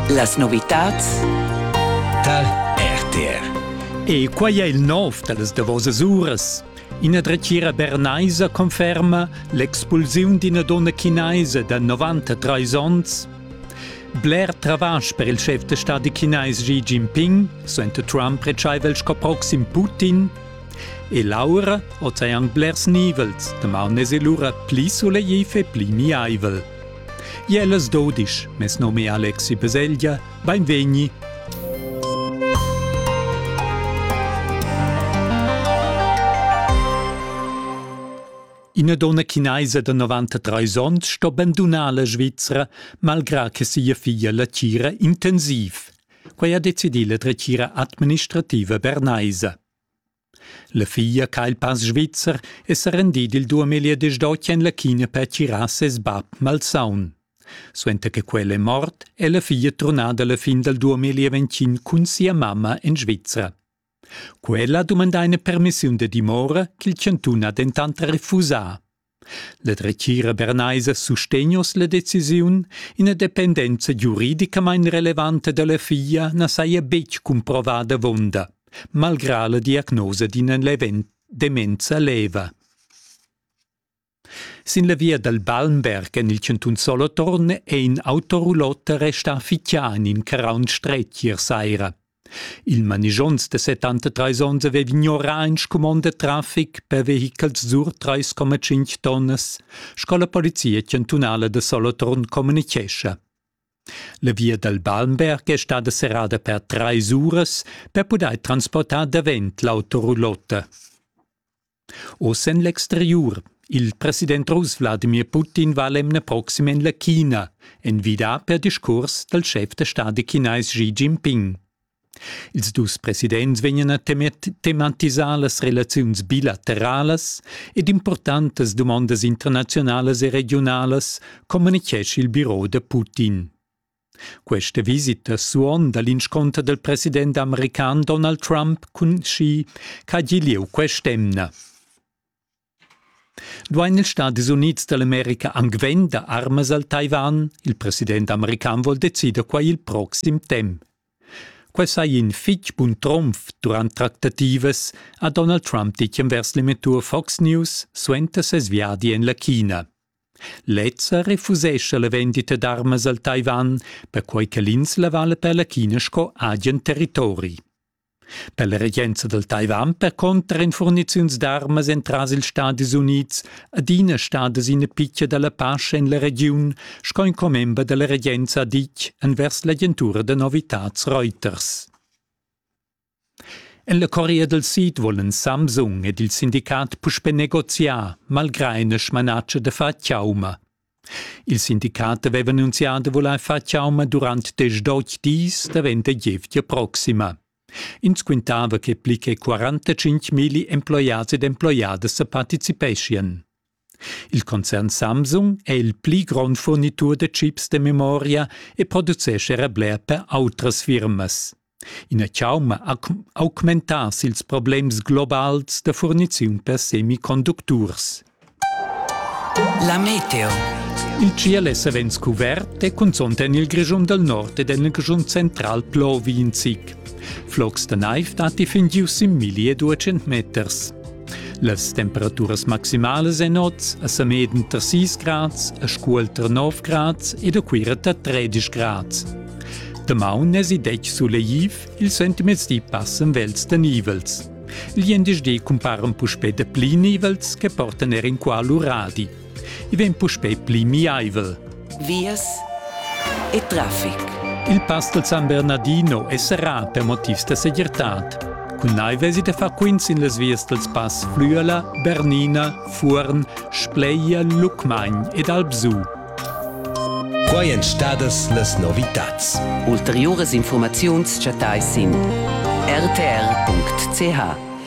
Las novitads tar RTR. E quai è il nov da las davosas uras. Ina dretgira bernaisa conferma l'expulsiun d'ina donna chinaisa da 93 onns. Bler travasch per il chef de stadi chinais Xi Jinping, suenter Trump retschaivel sco proxim Putin. E Laura, ozean blers nivels, damaun es lura pli solegliv e pli miaivel. Iel as do disch, mes nom è Alexi Peseglia, bainvegni. Ina donna chinaisa da 93 onns sto bandunar la Svizzera malgrà che sia figlia la tira intensiv. Quai ha decidì la dretgira administrativa bernaisa. La figlia ha il pass svizzer e s'ha rendì il 2018 en la China per tirar ses bab malsaun. Suenter che quella è mort, è la figlia turnada alla fin dal 2021 cun sia mamma en Svizzera. Quella ha dumandà ina permissiun da dimora ch'il chantun ha dentant refusà. La dretgira bernaisa sustegnos la decisiun, ina dependenza giuridicamain relevanta da la figlia na saja betg cumprovada avunda, malgrà la diagnosa d'ina demenza leva. Sin la via dal Balmberg en il chantun Solothurn è in autorulotta restà fitg anim ch'era un stretg ier saira. Il manischonz da 73 onns aveva ignorà in scumond da traffic per vehichels sur 3,5 tonnas, sco la polizia chantunala da Solothurn communitgescha. La via dal Balmberg è stada serrada per trais uras per pudair transportar davent l'autoroulotta. Oz en l'exteriur. Il president russ Wladimir Putin va l'emna proxima en la China, envidà per discurs dal schef da stadi chinais Xi Jinping. Ils dus presidents vegnan a tematisar las relaziuns bilateralas ed importantas dumondas internaziunalas e regiunalas, communitgescha il biro da Putin. Questa visita suonda l'insconter del president american Donald Trump cun Xi ch'ha gì lieu quest'emna. Duain ils Stadis Unids dall'America anc vender armas al Taiwan? Il president american vuol decider quai il proxim temp. Quai sai in fitg bun trumf durant tractativas, ha Donald Trump ditg envers l'emettur Fox News suenter ses viadi en la China. Lezza refusescha la vendita d'armas al Taiwan, perquai che l'ins la vala per la China sco agen territori. Per la regenza dal Taiwan per contra èn furniziuns d'armas entras ils Stadis Unids adina stadas ina pitga da la pace en la regiun, sco in commember da la regenza ha ditg envers l'agentura da novitads Reuters. En la Corea dal Sid vulan Samsung ed il sindicat puspè negoziar, malgrà ina smanatscha da far chauma. Il sindicat aveva annunzià da vulair far chauma durant diesch dis davent da gievgia proxima. Ins quintava che pli che 45 milli emploiads ed emploiadas sa participeschien. Il concern Samsung è il pli grond furnitur da chips da memoria e producescha era bler per autras firmas. Ina chauma ha augmentà ils problems globals da furniziun per semiconducturs. La meteo. Il CIL è savens cuvert e cunzont en il Grischun dal nord ed en il Grischun central plovi in zic. Flocs da naiv datti fin giu sin milli e duecent meters. Las temperaturas maximalas en oz a Sameden tar 6 grads, a Scuol tar 9 grads ed a Cuira tar 13 grads. Damaun n'èsi detg suleiv, ils centimeters di passan vels da nivels. Gli endisch di cumparan puspè da pli nivels che portan er inqual uradi, I vegn puspei pli miaivel. Vias e traffic. Il pass del San Bernardino è serrà per motivs da segirtad. Cun naivesi da far quints in las vias dels pass Flüela, Bernina, Fuorn, Spleia, Lucmagn ed Albsù. Quai èn stadas las novitads. Ulteriuras informaziuns chattais sin rtr.ch.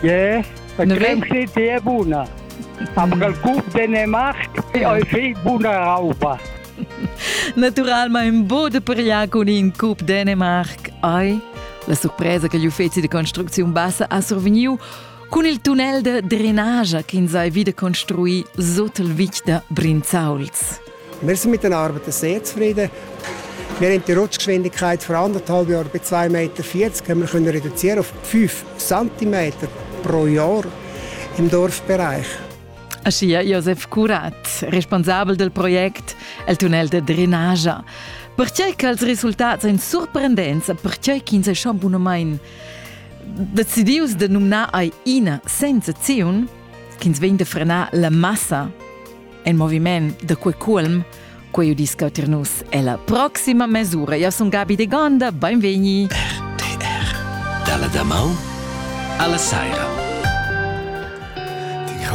Yeah, la cremsi ti è buna. Am gal cup Dänemark e ai fi buna rauba. Naturalmente un bo de pariar con in Cup Dänemark ai la sorpresa che gli uffizi di costruzione bassa ha survegniu con il tunnel de drenage che in sai vide construi sotto il vic da Brinzauls. Wir sind mit den Arbeiten sehr zufrieden. Wir haben die Rutschgeschwindigkeit von anderthalb Jahren bei 2,40 Meter wir können reduzieren auf 5 cm pro Jahr im Dorfbereich. Achia Josef Curat, responsabel del project El tunnel de drenagia. Perciai che els resultats ein surprendents, perciai ch'ins è schon bunomain decidius de numnar ai ina senza ziun, ch'ins vegn de frenar la massa En moviment da quei culm, quei udisca tir nus ella proxima mesura. Io sun Gabi de Gonda, beinvegni. RTR Dalla damau alla saira. Die